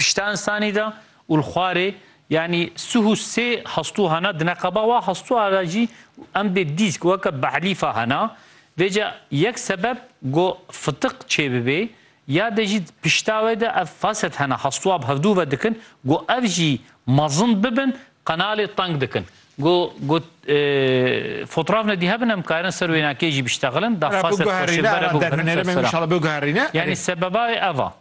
Pişta insanî de û li xwarê yanî sih û sê hastû hene, di neqeba wa hastûa de jî emdê dîsk weke behlîfa hene. Vê ca yek sebeb ku fitiq çêbibê ya de jî pişta wê de ev faset hene, hastûa bi hevdû ve dikin ku ev jî mezin bibin qenalê teng dikin. Ku ku fotraf nedî hebin em karin ser wênakê jî biştexilin, da faset xweşik bere biguherîne ser sira. Yanî sebeba wê ev a.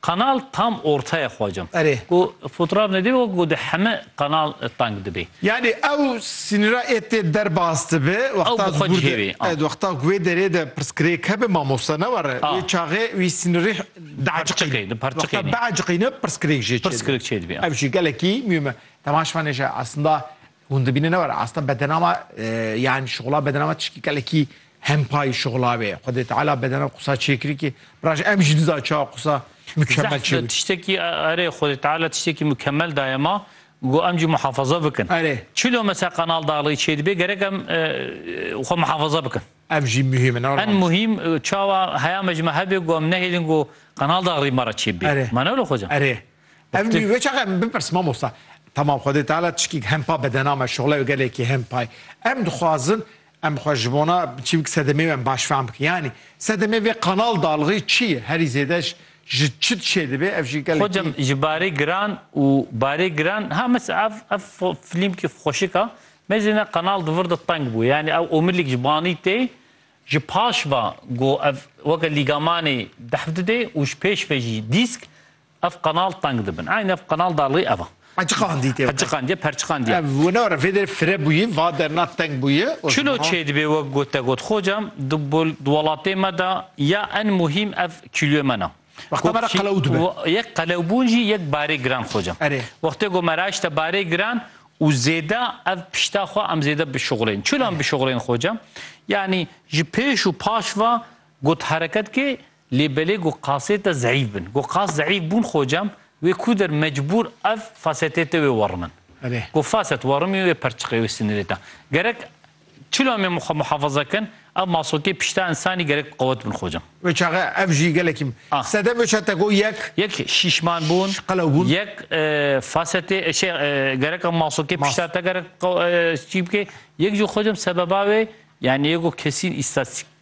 Kanal tam ortaya xwacam. Erê. Ku fotraf nedîbê wek ku di heme kanal tank dibê. Yanî ew sînira ê tê derbas dibe Ew wexta bi xwe cihê wê. A. wexta ku wê derê de pirsgirêk hebe mamosta ne were. A. Wê çaxê wî sînirî diherçiqîne. Wexta biherciqîne pirsgirêk jê çêdibê. Pirsgirêk çêdibê. A. Ev jî gelekî muhîm e. Temaşvanê ji aslında Hûn dibînin ne were asta bedenama yani şixula bedenama tişkî kelekî hempayî şixula wê. Xwedê Teala bedena qusa çêkirî ki biraj em jî diza çawa qusa mükemmel çêbû. Tiştekî erê Xwedê Teala tiştekî mükemmel daye ma got em jî muhafaza bikin. Erê. Çilo mesela kanal daxilî çêdibê gerek em xwe muhafaza bikin. Ev jî muhîm in. En muhîm çawa heya me ji me hebê got em nehêlin got kanal daxilî me re çêbibê. Erê. Ma ne wilo xwecan? Erê. Ev nî wê çaxa min bipirs mamosta. Tamam Xwedê Teala tişkî di hempa bedena me şoxleyo gelekî hempay. Em dixwazin em xwe ji bona çi bik sedemê wê em baş fehm bikin. Yanî sedemê vê qanal dalixî çi ye? Herî zêde ji ji çi dişê dibê? Ev jî gelekî Xwecem ji barê giran û barê giran ha mis ev ev filîmkî xweşik a. Me jî ne qanal di vir de teng bû. Yanî ew omilîk ji banî tê ji paş ve go ev weke lîgamanê deh didê û ji pêş ve jî dîsk Ev qanal teng dibin. Eyn ev qanal da lê ev a. Qeçiqandîtê. Qeçiqandiye, perçiqandiye. Ev wina re vêderê fire bûyî, va derna teng bûyî. Çilo çêdibê wek got te got xocam di welatê me de ya en muhîm ev kîloyê me na. Wexta me re qelew dibe. Yek qelewbûn jî yek barê giran xocam. Erê. Wextê ku me re eşte barê giran û zêde ev pişta xwe em zêde bişuxulên. Çilo em bişuxulên xocam? Yanî ji pêş û paş va got hereket kê Lê belê ku qasê te zeîf bin. Ku qas zeîf bûn xocam, wê ku der mecbûr ev fasetê te wê werimind. Ku faset werimî wê perçiqê wê sinirê te. Gerek çil amê min xwe muhafaza kin, ev masokê pişta însanî gerek qewet bin xocam. Wê çaxe ev jî gelekî min. Sedef wê çaxe te got yek. Yek şîşman bûn. Qelew bûn. Yek fasetê şey gerek ev masokê pişta te gerek çî bikê. Yek jî xocam sebeba wê yanî yek ku kesîn îstatistik.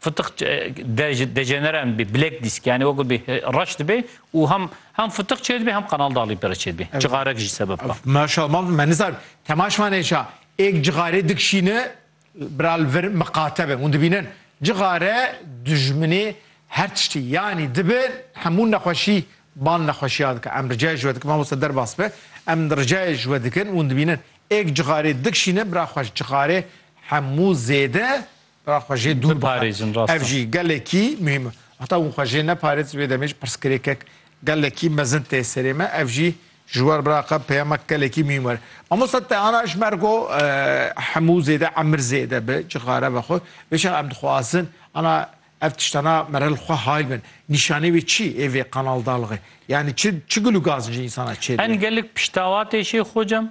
Fıtık dejeneren bi black disk yani o gibi raş dibe u hem hem fıtık çê dibe hem kanal dağlı pere çê dibe. Cığarek jî sebep ka. Maşallah me nizar temaş man eşa ek cığare dikşîne bral vir miqate be hûn dibînin cığare dijminê her tiştî yanî dibe hemû nexweşî bal nexweşiya dike em ricayê ji we dikim mamoste derbas be em ricayê ji we dikin hûn dibînin ek cığare dikşîne bira xweş cığare hemû zêde Ra xwe jê dûr biparêzin. Ev jî gelekî muhîm e. Heta hûn xwe jê neparêz vê demê jî pirsgirêkek gelekî mezin tê serê me. Ev jî ji wer biraqa peyamek gelekî muhîm were. Mamosta te ana ji ber ku hemû zêde emir zêde bi cixare vexwe vê şer em dixwazin ana ev tiştana mere li xwe hayl bin. Nîşanê wê çi ê vê qanal dalixê? Yanî çi çi gul û gazin ji însana çêdibin? Em gelek piştawatê şê xocam